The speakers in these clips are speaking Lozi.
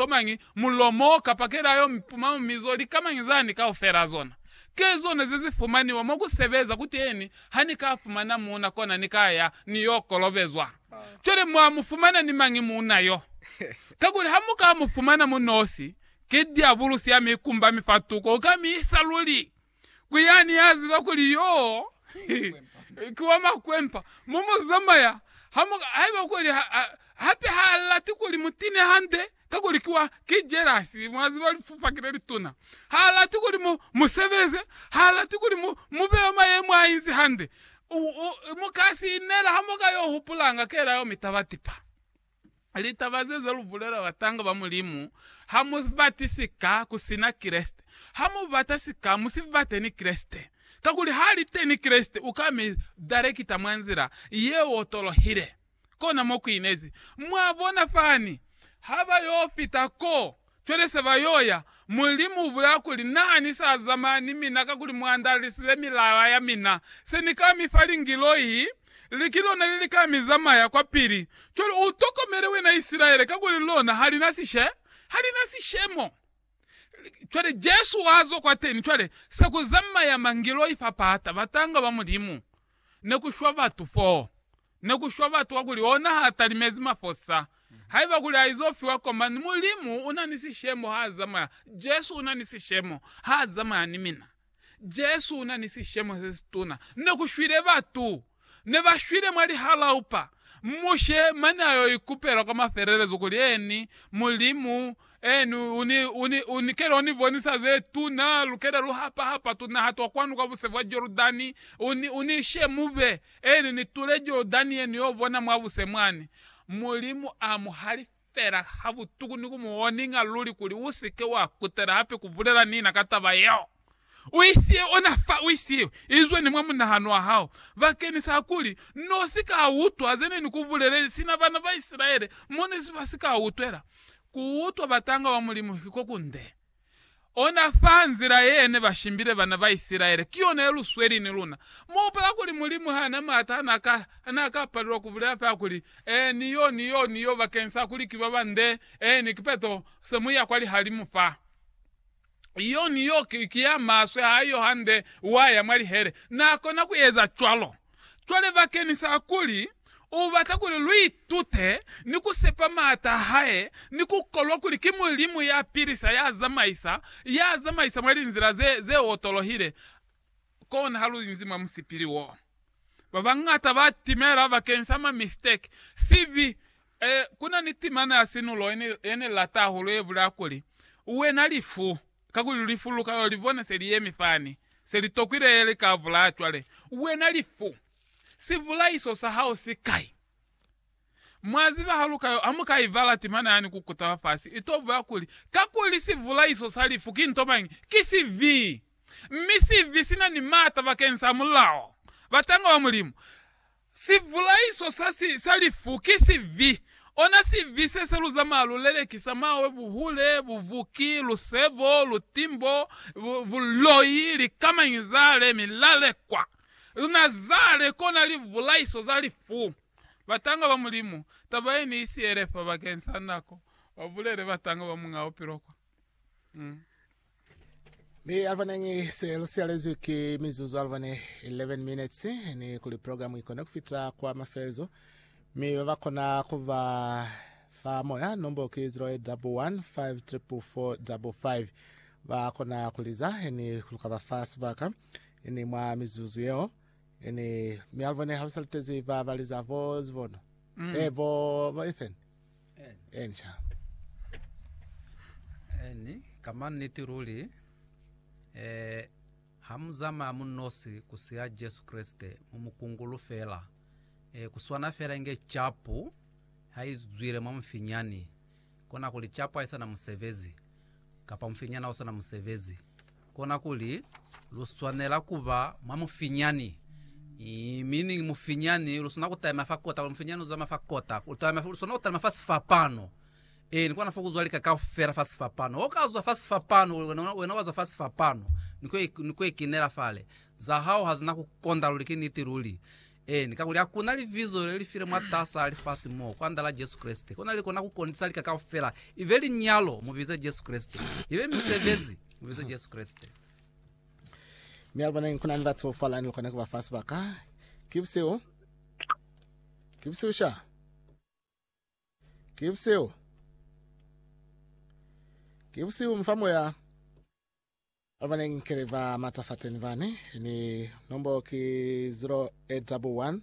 Tomañi mulilo mo ka pakela yo mi puma mizo likamañi za ni kaufela zona? Ke zona ze zi fumaniwa mo ku sebeza kuteni, ha ni ka fumana muuna kona ni ka ya ni yo kolobezwa. Cwale mwa mu fumana ni mañi muuna yo? Kakuli ha mu ka mu fumana mu nosi, ki diabulusi ya mi kumba mifatuko, u ka mi isa luli. ku yani ya ziba kuli yoo ki wa makwempa, mo mu zamaya, ha mu, haiba kuli ha, ha, hape ha lati kuli mu tine hande, kakuli ki wa, ki jelasi, mwa ziba lifupaki le lituna. Ha lati kuli mu, mu sebeze, ha lati kuli mu, mu be mwa mayemo a inzi hande. U, u, mu ka si inela ha mu ka yo hupulanga kela yo mitaba tipa. Litaba ze za lu bulela batanga ba Mulimu, Ha mu bati sika ku sina Kreste. Ha mu bata sika, mu si bate ni Kreste. Kakuli ha li teni Kreste, u ka mi darekita mwa nzila ye otolohile. Kona mo ku inezi. Mwa bona fani, ha ba yo fita ko, Cwale se ba yo ya, Mulimu u bulaya kuli, Na ni sa zamaya ni mina kakuli mu andalisile milala ya mina. Se ni ka mi fa lingiloi, li ki lona le li ka mi zamaya kwapili. Cwale u tokomele wena Isilaele, kakuli lona ha li na sishe, ha li na sishemo. Cwale Jesu wa zwa kwateni, cwale se ku zamaya mangiloi fa pata, batanga ba Mulimu ne ku shwa batu foo. ne ku shwa batu wa kuli ona ha talimezi mafosa. Haiba kuli ha izo fiwa koma ni Mulimu una ni sishemo ha zamaya, Jesu una ni sishemo ha zamaya ni mina. Jesu una ni sishemo se situna. Ne ku shwile batu. Ne ba shwile mwa lihalaupa. Mushe mane ayo ikupela kwa mafelelezo kuli, Eeni, Mulimu, Eeni, uni, uni, uni kela uni bonisa ze tuna, lukela lu hapa hapa tunaha twa kwanu kwa buse bwa Jordani, uni, uni ishe mube, Eli ni tule Jordani ye ni yo bona mwa buse mwani. Mulimu a mu halifela ha butuku ni ku mu oninga luli kuli u si ke wa kutela hape ku bulela ni na ka taba yeo. U isiwe ona fa, u isiwe. Izwe ni mwa munahano wa hao, bakeñisa kuli n'o si ka utwa ze ne ni ku bulelezi, sina bana ba Isilaele mo ne ba si ka utwela. Ku utwa batanga ba Mulimu ki ko kunde. Ona fa nzila ye ne ba shimbile bana ba Isilaele ki yona ye lu sweli ni luna. Mu hupula kuli Mulimu ha na m'ata ha n'a ka, ha n'a ka palelwa ku bulela fela kuli, Ee, ni yo, ni yo, ni yo, bakeng sa kuli ki ba bande, ee, ni kipeto, se mu ya kwa lihalimu fa. Iyo, ni yo, ki ya maswe, ha iyo hande, wa ya mwa lihele. N'a kona ku eza cwalo. Cwale bakeñisa kuli u bata kuli lu itute ni ku sepa m'ata a hae ni ku kolwa kuli ki Mulimu ya pilisa, ya zamaisa, ya zamaisa mwa linzila ze, ze otolohile, kona ha lu inzi mwa musipili wo. Ba bañata ba timela bakeñisa ma mistake, sibi. Eh, ku na ni timana ya sinulo ye ni, ye ni lata hahulu ye bulaya kuli, Wena lifu, Kakuli lifu lu ka yo li bona se li yemi fani, se li tokwile li ka vulaya. Cwale, wena lifu, sivulaiso sa hao si kai? Mwa ziba ha lu ka yo amuka ibala timana yani ku kutaba fasi, i to buya kuli, Kakuli sivulaiso sa lifu ki nto mañi? Ki sibi! Mi sibi si na ni m'ata bakeng sa mulao. Batangwa ba Mulimu. Sibulaiso sa si sa lifu ki sibi, ona sibi se se lu zamaa lu lelekisa mawe, buhule, buvuki, lusebo, lutimbo, buloi, likamañi zale, milalekwa. Luna zale kona libulaiso za lifu. Batanga ba Mulimu, taba ye ni sielefa bakeng sa nako, ba bulele batanga ba muñaa bupilo kwa. Ni alvanengi se lu sialezwi ki mizuzu alvane 11 minutes ni kuli programu ikone kufita kwa mafelelezo mi ba ba kona kuba fa moya nombo ki 08154445 ba kona kuliza ni luka ba fa subaka ni mwa mizuzu yeo ni mi alvane halusalutezi ba baliza bo zibono mm. eh, bo, bo ethan Elisha. Eeni, ka mannete luli, eh, ha mu zamaya mu nosi ku siya Jesu Kreste, mu mu kungulu fela, eh, ku swana fela inge capu ha i zwile mwa mufinyani, kona kuli capu ha i sa na musebezi, kapa mufinyani ha u sa na musebezi, Kona kuli, lu swanela ku ba mwa mufinyani. Mi ni mufinyani lu swana ku talima fa kota, kuli mufinyani u zama fa kota. Lu talima, lu swana ku talima fa sifapano. Ee, ni kona fa ku zwa lika kaufela fa sifapano. Ho ka zwa fa sifapano, kuli wena, wena wa zwa fa sifapano, ni ku, ni ku ekinela fale. Za hao ha zina ku konda luli, ki niti luli. Eeni, kakuli hakuna libizo lelifi le mwatas'a lifasi mo, kwandala Jesu Kreste, kona likona kukondisa lika kaufela, ibe linyalo, mubize Jesu Kreste, ibe misebezi, mubize Jesu Kreste. Mi aliboneni kunani batu fala nilikona kubafa sibaka. Ki busihu. Ki busihu sha. Ki busihu. Ki busihu mufa moya. Ba ba neng keli ba matafateni bani ni nombolo ki 0811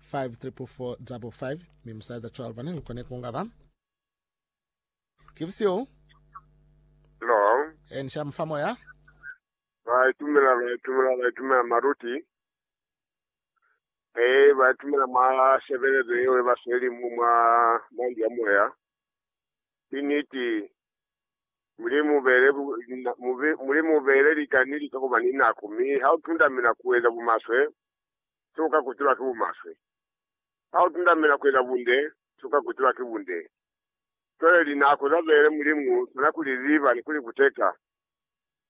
544555 mi musaeza cwalo bani lu koni kunga ba. Ki busio. Hello. E ni sha mufa moya. Ba itumela ba itumela ba itumela maruti. E ba itumela ma sebelezo yeo e ba sweli mu mwa mwa ndu ya moya. Ki niti. Mulimu ubeele lika ni lika kuba ni nako, mi ha utundamela kueza bumaswe, se uka kutiba ki bumaswe. Ha utundamela kueza bunde, se uka kutiba ki bunde. Cwale linako za beele Mulimu uswana ku li ziba ni ku li kuteka.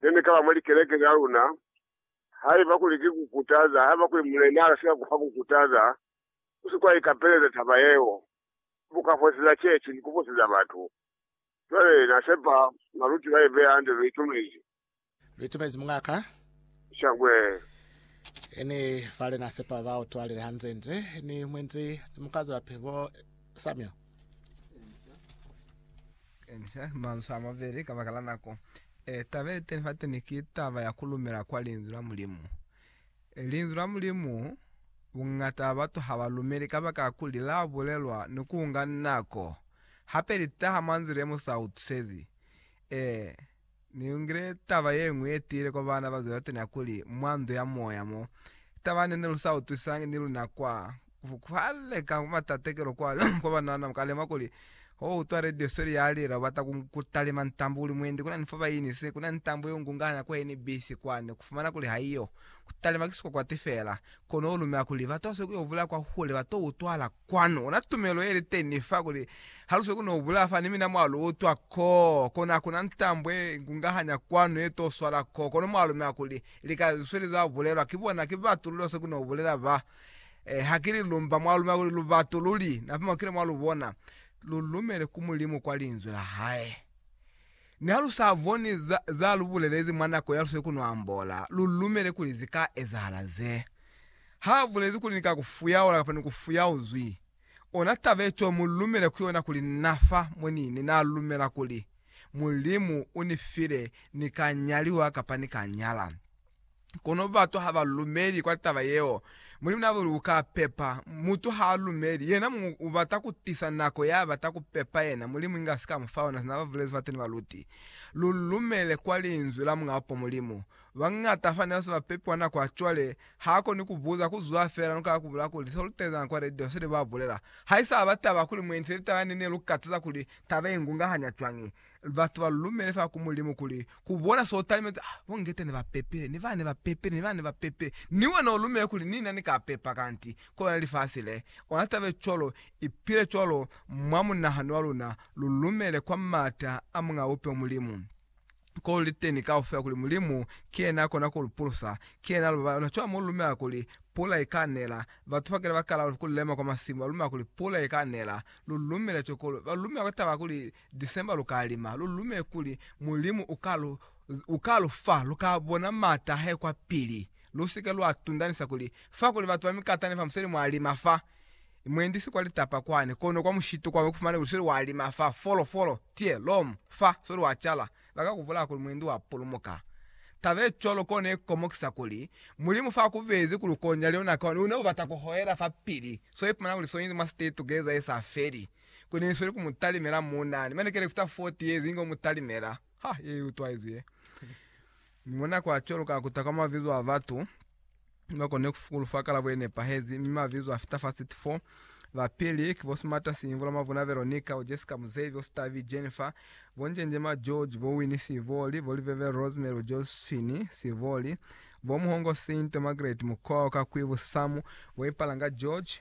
Ne ni kaba mwa likeleke za luna, haiba kuli ki kukutaza, haiba kuli Mulena akasika kufa kukutaza, usikuwa ikapeleza taba yeo. bukafosisa cecu ni kufosisa batu. Cwale Na sepa nga lu ciba yebeya hande lu itumezi. Lu itumezi mungaka. Shangwe. Ni fale Na sepa ba utwalile hande nde ni mwendi ni mukazala pe bo Samuel. Kenisa manzwi a mabeli kabakala nako. Taba yeteni fateni ki taba ya kulumela kwa Linzwi la Mulimu. Linzwi la Mulimu, Bungata ba batu ha ba lumeli kabakala kuli la bulelwa ni ku nga nako, hape li taha mwa nzila ye mu sa utwisezi. Ee, ni lungile taba ye ñwi ye tiile kwa baana ba Zebatani ya kuli, mwa ndu ya moya mo, taba ne ne lu sa utwisisangi ni luna kwa, Kuhaleka kwa matatekelo kwa banana mu ka lema kuli, Ha u utwa radio seli ya lela, u bata ku talima ntambu u li mwendi, ku na ni fo ba inisi, ku na ni ntambu ye u ngungahanya kwa NBC kwani, ku fumana kuli ha iyo. Ku talima ki sikwakwati fela. Kono u lumela kuli, Batu ha sikuyo bulaya kwa hule, ba to utwala kwanu. Una tumelo ye li teni fa, kuli, Ha lu sikuyo no bulaya fa, ni mina mwa lu utwa ko, kono ha ku na ntambu ye i ngungahanya kwanu ye to swala ko. Kono mwa lumela kuli, lika ze sweli za bulelwa ki bona ki batu lu lo sikuyo no bulela ba. Eh, ha kili lumba mwa lumela kuli lubatu luli napa makile mwa lubona, lulumele ku Mulimu kwa linzwi la hae. Ni ha lu sa boni za, za lu bulelezi mwa nako ya lu sili ku no ambola, lu lumele kuli zi ka ezahala ze. Ha bulezi kuli ni ka ku fuyaula kapa ni ku fuyauzwi, ona taba ye cwalo mu lumele ku yona kuli na fa mo ni ne na lumela kuli Mulimu u ni file ni ka nyaliwa kapa ni ka nyala. Kono batu ha ba lumeli kwa taba yeo. Mulimu n'a bule uka pepa. Mutu ha a lumeli, yena muñwi u bata ku tisa nako ya bata ku pepa yena, Mulimu inge a si ka mu fa yona, sina ba bulezi fate ni baluti. Lu lumele kwa Linzwi la Muñ'a Upo Mulimu. Ba ñata fani ba se ba pepiwa nako ya cwale, ha koni ku buza, ku zwa fela, lu ka kubula kuli, Se lu tezeñ'a kwa radio, se ne ba bulela, ha i sa ba taba kuli mwendi, se li taba ya nene, lu ka taza kuli, Taba ye ngungahaña cwañi? Batu ba lumele fa ku Mulimu kuli ku bona so talimezi. Ah, bo Ngeta ne ba pepile, ni ba ne ba pepile, ni ba ne ba pepile. Ni wena u lumele kuli ni na ni ka pepa kanti ku lona lifasi le. Ona taba cwalo, ipile cwalo mwa munahano wa luna, lu lumele kwa m'ata a Muñ'a Bupilo Mulimu, ko luli teni kaufela kuli Mulimu ki yena ya kona ku lu pulusa, ki yena a lu babala. Ona cwalo mo lu lumela kuli pula i ka nela. Batu ba kile ba kala ku lema kwa masimu, ba lumela kuli pula i ka nela. Lu lumele cwalo, kono ba lumela ka taba ya kuli December lu ka lima lu lume kuli Mulimu u ka lu fa, lu ka bona m'ata a hae kwa pili. Lu si ke lwa tundanisa kuli, Fa kuli batu ba mikatani fa museli mwa lima fa, mwendi si kwa litapa kwani, kono kwa mushitu kwani ku fumane kuli soli wa lima fa, folo, folo, tie, lom, fa, soli wa cala, ba ka ku bulaya kuli mwendi wa pulumuka. Taba ye cwalo kono ye komokisa kuli, Mulimu fa ku bezi kuli u konya leo nako, u ne u bata ku hohela fa pili, so ipumana kuli soinzi mwa state together ye sa feli. Ko ne ni sweli ku mu talimela mo na ni manike le fita 40 years ni ko mu talimela. Ha, ye i utwaizi ye. Mi mwa nako ya cwalo ka kuta kwa mabizo a batu ni ba konile ku fukulu fa kalabo ye nepahezi, mi mabizo a fita fa 34. Ba pili ki bo Smarter Siimvula, Mavuna Veronica, bo Jessica Muzevi, bo Stavi Jennifer, bo Njenjema George, bo Winnie Siivoli, bo Liveve Rosemary, bo Josephine Siivoli, bo Muhongo Saint, bo Margaret Mukwawa, ka kwi bo Samu, bo Ipalanga George,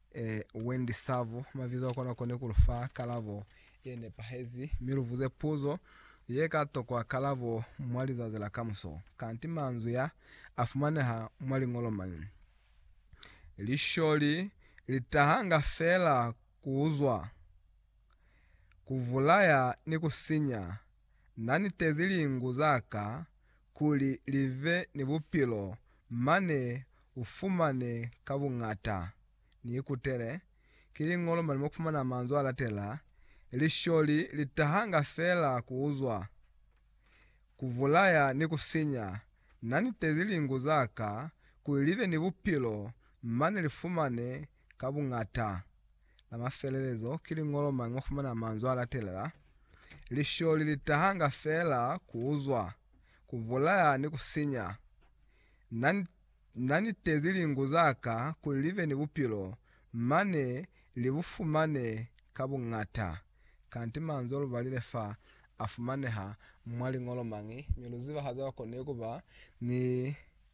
Ee, Wendy Savo, mabizo a kona kone ku lu fa kalabo ye nepahezi, mi lu buze puzo ye ka tokwa kalabo mwa lizazi la kamuso. Kanti manzwi a, a fumaneha mwa liñolo mañi? Lisholi li tahanga fela ku uzwa, ku bulaya ni ku sinya Na nitezi lingu za ka kuli li ve ni bupilo mane u fumane ka buñata. Ni ikutele ki li ñolo mane mo ku fumana manzwi a latela, Lisholi li tahanga fela ku uzwa, ku bulaya ni ku sinya. Na nitezi lingu za ka kuli li ve ni bupilo mane li fumane ka buñata. La mafelelezo ki liñolo mañi mwa fumana manzwi a latelela, Lisholi li tahanga feela ku uzwa, ku bulaya ni ku sinya. Na, na nitezi lingu za ka kuli li be ni bupilo, mane li bu fumane ka buñata. Kanti manzwi o lu balile fa a fumaneha mwa liñolo mañi, mi lu zibahaza kwa konile ku ba ni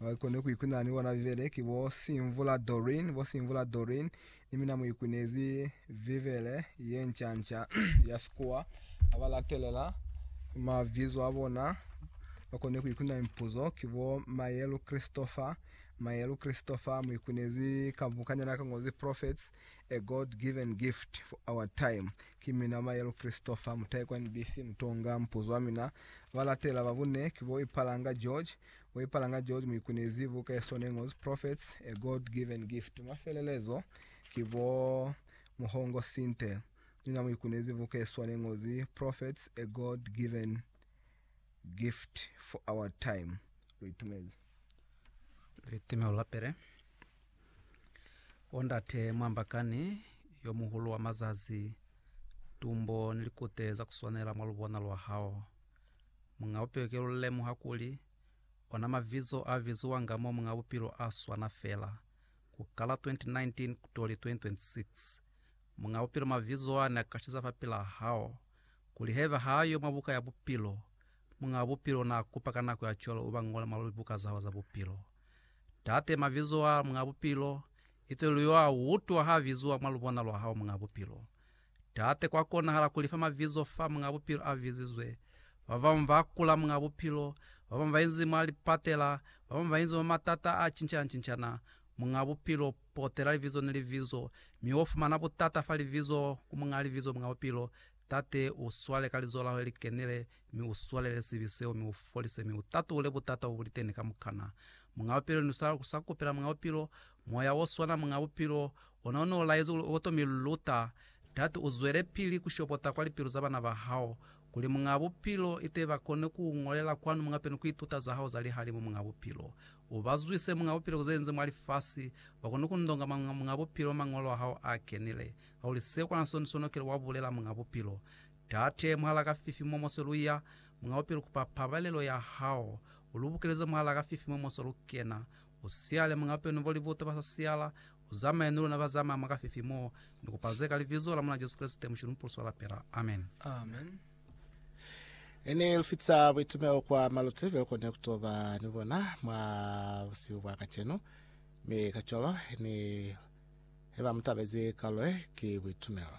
Haikona ku ikwina ni bona Bibele ki bo Simvula Doreen, bo Simvula Doreen ni mina mu ikwinezi Bibele ye nca nca ya Sikuwa. Aba latelela mabizo a bona bakone ku ikwina mipuzo ki bo Mayelu Christopher, Mayelu Christopher mu ikwinezi ka bukanyana ka ngozi Prophets. A God-given gift for our time. Ki mina Maelo Christopher, mutai kwa NBC Mutonga. Mupuzo wa mina ba latela ba bune ki bo Ipalanga George. Bo Ipalanga George mu ikunezi buka ye sone ngozi Prophets, A God-given gift. Mwa felelezo ki bo Muhongo Sinte. Ni na mu ikunezi buka ye swane ngozi Prophets, A God-given Gift for our time lu itumezi. Litimelo la pele. O ndate mwambakani yo muhulu wa mazazi, tumbo ni likute za kuswanela mwa lubona lwa hao. Muñ'a Bupilo ki lu lemuha kuli, ona mavizo a viziwanga mo Muñ'a Bupilo a swana fela. Ku kala 2019 kutoli 2026, Muñ'a Bupilo mavizo a ne a kashiza fapil'a hao. kuli haiba ha yo mwa Buka ya Bupilo, Muñaa Bupilo naa kupa ka nako ya cwalo uba ñola mwa libuka za hao za bupilo. Tate, mabizo a Muñaa Bupilo, ite lu yo a utwa ha biziwa mwa lubona lwa hao, Muñaa Bupilo. Tate, kwa konahala ku lifa mabizo fa Muñaa Bupilo a bizizwe. Ba bañwi ba kula, Muñaa Bupilo, ba bañwi ba inzi mwa lipatela, ba bañwi ba inzi mwa matata a cincana-cincana, Muñaa Bupilo, Potela libizo ni libizo, mi wo fumana butata fa libizo ku Muñaa Libizo, Muñaa Bupilo. Tate, u swale ka Lizo la Hao le li kenile, mi u swalele sibi seo, mi u folise, mi u tatule butata bo bu li teni kamukana. Muñaa Bupilo, ni sa ku sa kupela, Muñaa Bupilo, Moya o swana, Muñaa Bupilo, ona o ne u laezi kuli u koto mi luta. Tate, u zwelepili ku shopota kwa lipilu za bana ba Hao, Kuli Muñaa Bupilo ite bakone kuungolela kwanu Muñaa Bupilo ni kuituta zahao za lihalimu Muñaa Bupilo ubazwise Muñaa Bupilo kuzenze mwa lifasi bakone kundonga mwa Muñaa Bupilo Mañolo ahao aakenile Kakuli se kwana soni sono kile wabulela Muñaa Bupilo Tate Muhalaa Kafifi mo mose luya Muñaa Bupilo kupa pabalelo yahao ulubukeleze Muhalaa Kafifi mo mose lukena U siyale Muñ'a Penu Voli Buto Ba Sa Siyala, U Zamaye Ni Luna Ba Zamaya Mwa Kafifi Mo Ni Kupa Ze Ka Libizo La Mulena Jesu Kreste, Mushe Lumupuluswa wa Lapela. Amen. Ne ni lufitisa buitumelo kwa Maluti byo lukone kutoba ni bona mwa busihu bwa kacenu, mi kacwalo ni heba mutabezi kalulo ye ki buitumelo.